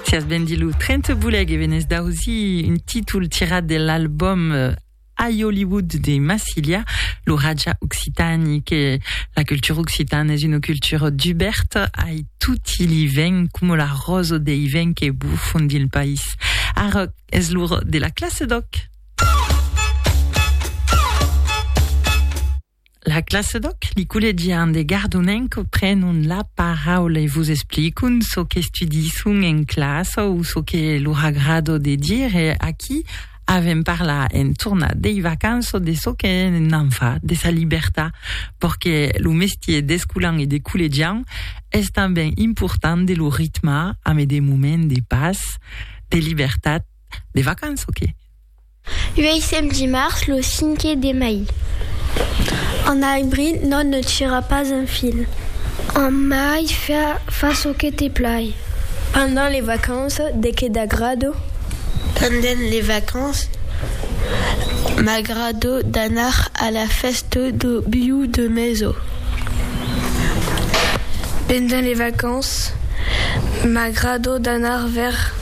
Sias ben dit lo 30 boleg e venés d'ausir un títol tirat de l'album I Hollywood de Massilia, lo Raja Occitani que la cultura occitana es una cultura duberta ai tutti li vents coma la rosa dei vents que bufan dins lo país. Ara es l'ora de la classe d'òc! La classe d'òc, li collegian de Gardonenc prenon la paraula e vos explicon çò qu'estudisson en classa o çò que lor agrado de dire. Aquí avèm parlar en tornat dei vacanças, de çò que n'an fa, de sa libertat, perque lo mestier d'escolan e de collegian es tanben important de lo ritmar amé de moments de pas, de libertat, de vacanças que. Uèissèm dimars lo cinque de mai. En abril non ne tira pas un fil. En mai fa çò que te plai. Pendent les vacances de que t'agrado? Pendent les vacances m'agrado d'anar a la fèsta do biu de meso. Pendent les vacances m'agrado d'anar vers.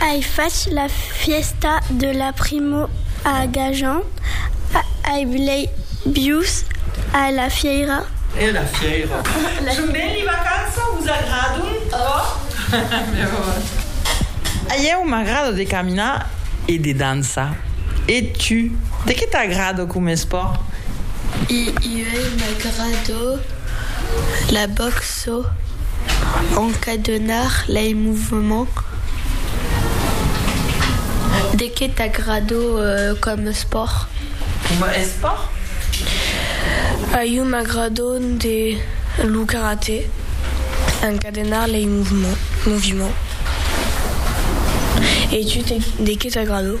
Ai fach la fièsta de la primo a Gajan, ai blei bius a la fièira. Son ben li vacança, vos agradon tròp? A ieu m'agrada de caminar e de dançar. E tu, de qué t'agrada coma espòrt? A ieu m'agrada la box. çò encadenar lei movements de que t'agrado com espòrt? Coma espòrt? A iu m'agrado de lo karate encadenar lei movements e tu de que t'agrado?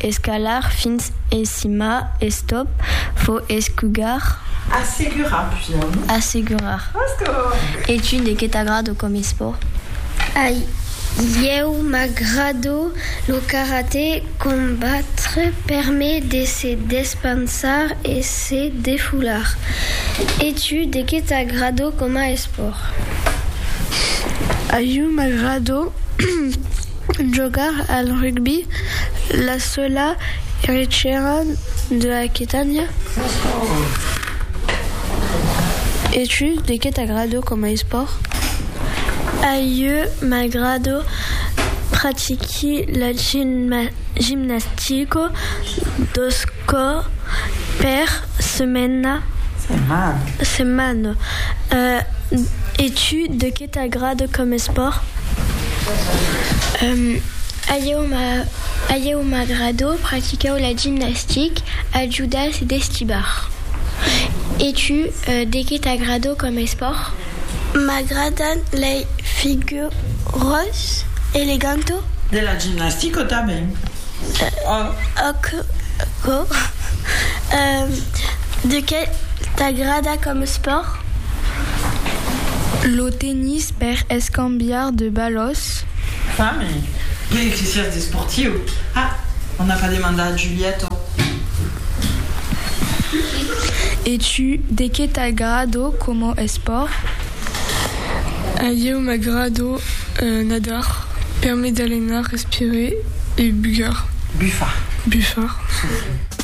Escalar fins en cima, estop, vo escugar. Assegurar, pujar, non? Assegurar. E tu, de qué t'agrado com esport? A ieu m'agrado lo karaté, combatre per me de se despansar e se defular. E tu, de qué t'agrado coma esport? A ieu m'agrado Jogar al rugbi, la sola erechèra de Aquitània. E tu, de qué t'agrado coma espòrt? A ieu m'agrado pratiqui la gimnastica dos còrs per. Setmana. E tu, de qué t'agrada com espòrt? A ieu m'agrada practicar la gimnastic, ajudar e destibar. E tu, de qué t'agrada com espòrt? M'agradan lei figuras elegantas. De la gimnastica tanben. Aquò de qué t'agrada coma espòrt? Lo tennis per escambiar de balòs. Fami, e que siás desportiu? Ah, on n'a pas demandat a Giulietto. E tu, de qué t'agrada coma espòrt? A ieu m'agrado nadar permet d'alenar, respirer e bugar, bufar.